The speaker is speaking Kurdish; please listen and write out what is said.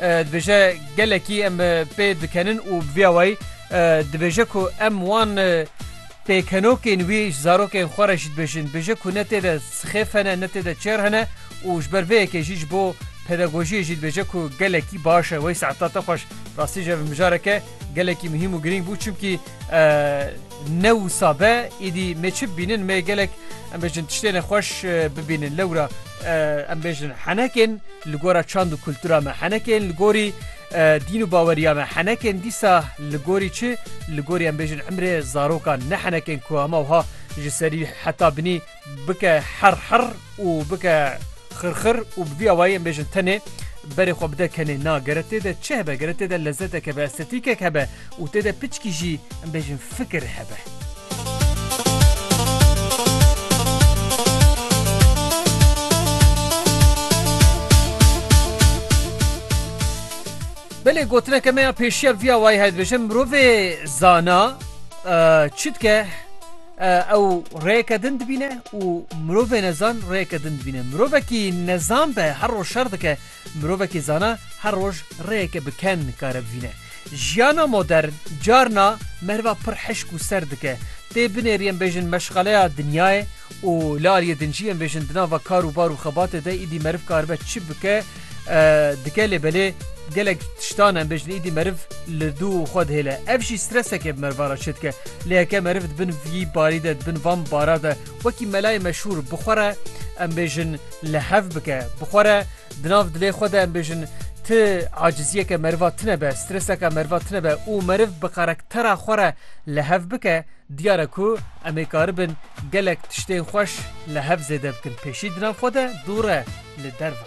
Dibêje gelekî em pê dikenin û bi vî awayî dibêje ku em wan pêkenokên wî ji zarokên xwe re jî dibêjin. Dibêje ku ne tê de sixêf hene ne tê de çêr hene û ji ber vê yekê jî ji bo pedagojiyê jî dibêje ku gelekî baş e. Wey Se'ed Tate Xweş, rastî ji ev mijareke gelekî muhîm û girîng bû çimkî Ne wisa be îdî me çi bînin me gelek em bêjin tiştê ne xweş bibînin lewra em bêjin henekên li gora çand û kultura me henekên li gorî dîn û baweriya me henekên dîsa li gorî çi li gorî em bêjin emrê zarokan ne henekên ku hema wiha ji serî heta binî Bike her her û bike xir xir û bi vî awayî em bêjin tenê berê xwe bide kenê na gere tê de çi hebe gere tê de lezetek hebe estetîkek hebe û tê de piçkî jî em bêjin fikir hebe. Belê gotineke me ya pêşiya vî awayî heye dibêje mirovê zana çi dike? Ew rêyeke din dibîne û mirovê nezan rêyeke din dibîne. Mirovekî nezan be her roj şer dike, mirovekî zana her roj rêyeke bi ken nikare bivîne. Jiyana modern carna meriva pir hişk û ser dike. Tê binêrî em bêjin meşxaleya dinyayê û li aliyê din jî em bêjin di nava kar û bar û xebatê de îdî meriv karibe çi bike dike lê belê gelek tiştan em bêjin îdî meriv li dû xwe dihêle. Ev jî stresekê bi meriva re çêdike. Lê heke meriv di bin vî barî de di bin van bara de wekî melayê meşhûr bi xwe re em bêjin li hev bike bi xwe re di nav dilê xwe de em bêjin ti aciziyeke meriva tine be streseka meriva tine be û meriv bi karaktera xwe re li hev bike Diyar e ku em ê karibin gelek tiştên xweş li hev zêde bikin pêşî di nav xwe de dûr e li derve.